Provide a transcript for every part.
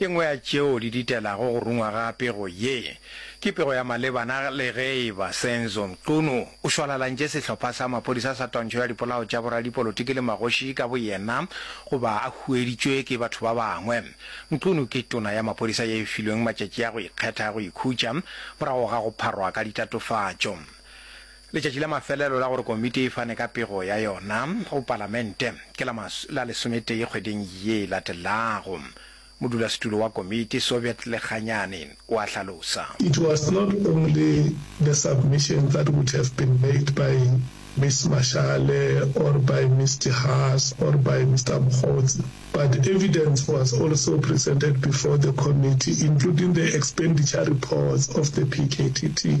E nngwe ya tšeo di ditelago go rungwa ga pego ye ke pego ya malebana le ge e ba Senzo Mchunu o šwalalantše sehlopha sa maphodisa sa twantšho ya dipolao tša boradipolotiki le magoši ka boyena goba a hueditšwe ke batho ba bangwe. Mchunu ke tona ya maphodisa ye e filweng matšatši a go ikgetha a go ikhutša morago ga go pharwa ka ditatofatšo. Letšatši la mafelelo la gore komiti e fane ka pego ya yona go Palamente ke la la lesometee kgweding ye e latelago, modulasetulo wa komiti, Soviet Lekganyane, o a hlalosa. It was not only the submission that would have been made by Miss Mashale or by Miss De Haas or by Mister Mokgotsi but evidence was also presented before the committee including the expenditure reports of the PKTT.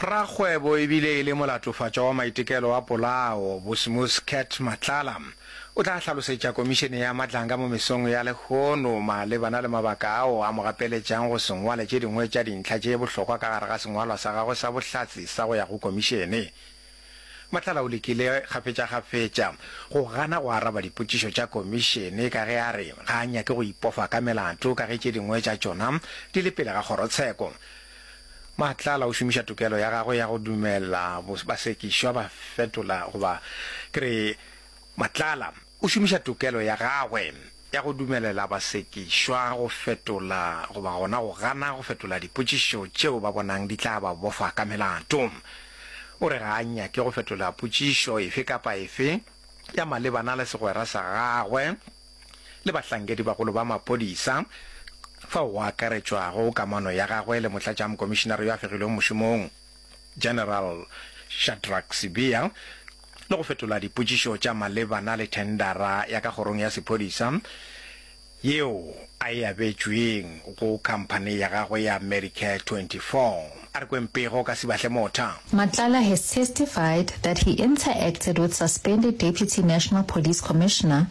Rakgwebo e bile e le molatofatšwa wa maitekelo a polao, Bosimus Cat Matlala, o tla hlalosetša Komišene ya Matlanga mo mesong ya lehono malebana le mabaka ao a mo gapeletšang go se ngwale tše dingwe tša dintlha tše bohlokwa ka gare ga sengwalwa sa gagwe sa bohlatse sa go ya go Komišene. Matlala o lekile kgafetšakgafetša go gana go araba dipotšišo tša Komišene ka ge a re ga a nyake go ipofa ka melato ka ge tše dingwe tša tšona di le pele ga kgorotsheko. Matlala o šomiša tokelo ya gagwe ya go dumela basekišwa ba fetola goba ke re Matlala O šomiša tokelo ya gagwe ya go dumelela basekišwa go fetola goba gona go gana go fetola dipotšišo tšeo ba bonang di tla ba bofa ka melato. O re ga a nyake go fetola potšišo efe kapa efe ya malebana le segwera sa gagwe le bahlankedibagolo ba maphodisa, fao go akaretšwago kamano ya gagwe le Motlatšamokomišinare yo a fegilweng mošomong. General Shadrack Sibiya le go fetola dipotšišo tša malebana le thendara ya ka kgorong ya sephodisa yeo a e abetšweng go khamphani ya gagwe ya Medicare 24. A re kweng pego ka Sibahle Motha. Matlala has testified that he interacted with suspended Deputy National Police Commissioner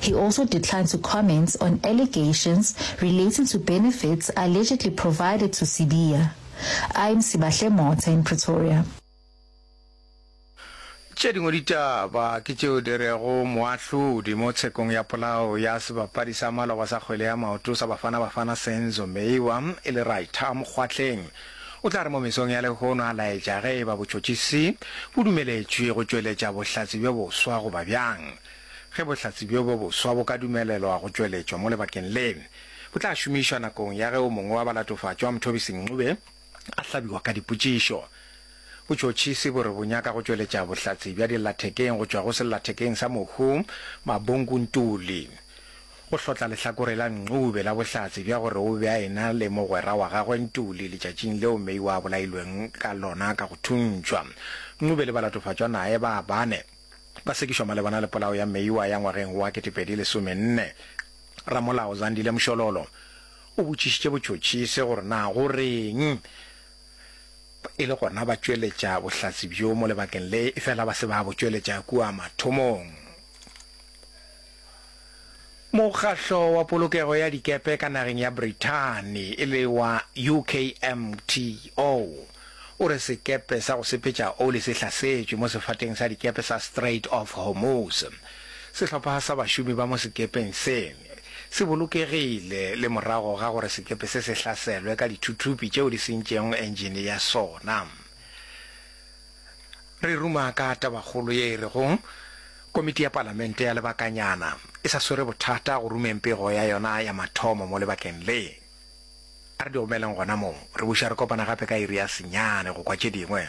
He also declined to comment on allegations relating to benefits allegedly provided to Sibiya. Im Sibahle Motha in Pretoria. Tše dingwe ditaba ke tšeo di rego moahlodi mo tshekong ya polao ya sebapadi sa maloba sa kgwele ya maoto sa Bafana Bafana Senzo Meyiwa e le Rytah Mokgwatleng o tla re mo mesong ya lehono a laetša ge e ba botšhotšhisi bo dumeletšwe go tšweletša bohlatse bjo boswa goba bjang. Ge bohlatse bjo bjo boswa bo ka dumelelwa go tšweletšwa mo lebakeng le, bo tla šomišwa nakong ya ge o mongwe wa balatofatšwa wa Mthobisi Ncube a hlabiwa ka dipotšišo. Botšhotšhisi bo re bo nyaka go tšweletša bohlatse bja dillathekeng go tšwa go sellathekeng sa Mohu Mabonku Ntuli go hlotla lehlakore la Ncube la bohlatse bja gore o be a ena le mogwera wa gagwe Ntuli letšatšing leo Meyiwa a bolailweng ka lona ka go thuntšhwa. Ncube le balatofatšwa naye ba bane ba sekišwa malebana le polao ya Meyiwa ya ngwageng wa 2014. Ramolao Zandile Mshololo o botšišitše botšhotšhisi gore na go reng e le gona ba tšweletša bohlatse bjo mo lebakeng le efela ba se ba bo tšweletša kua mathomong. Mokgahlo wa polokego ya dikepe ka nageng ya Brithani e le wa UKMTO o re sekepe sa go sepetša oli se hlasetšwe mo sefateng sa dikepe sa Strait of Hormuz. Sehlopha sa bašomi ba mo sekepeng se se bolokegile le morago ga gore sekepe se se hlaselwe ka dithuthupi tšeo di sentšego engine ya sona. Re ruma ka tabakgolo ye e rego Komiti ya Palamente ya Lebakanyana e sa swere bothata go rumeng pego ya yona ya mathomo mo lebakeng le. A re di omeleng gona moo, re buša re kopana gape ka iri ya senyane go kwa tše dingwe.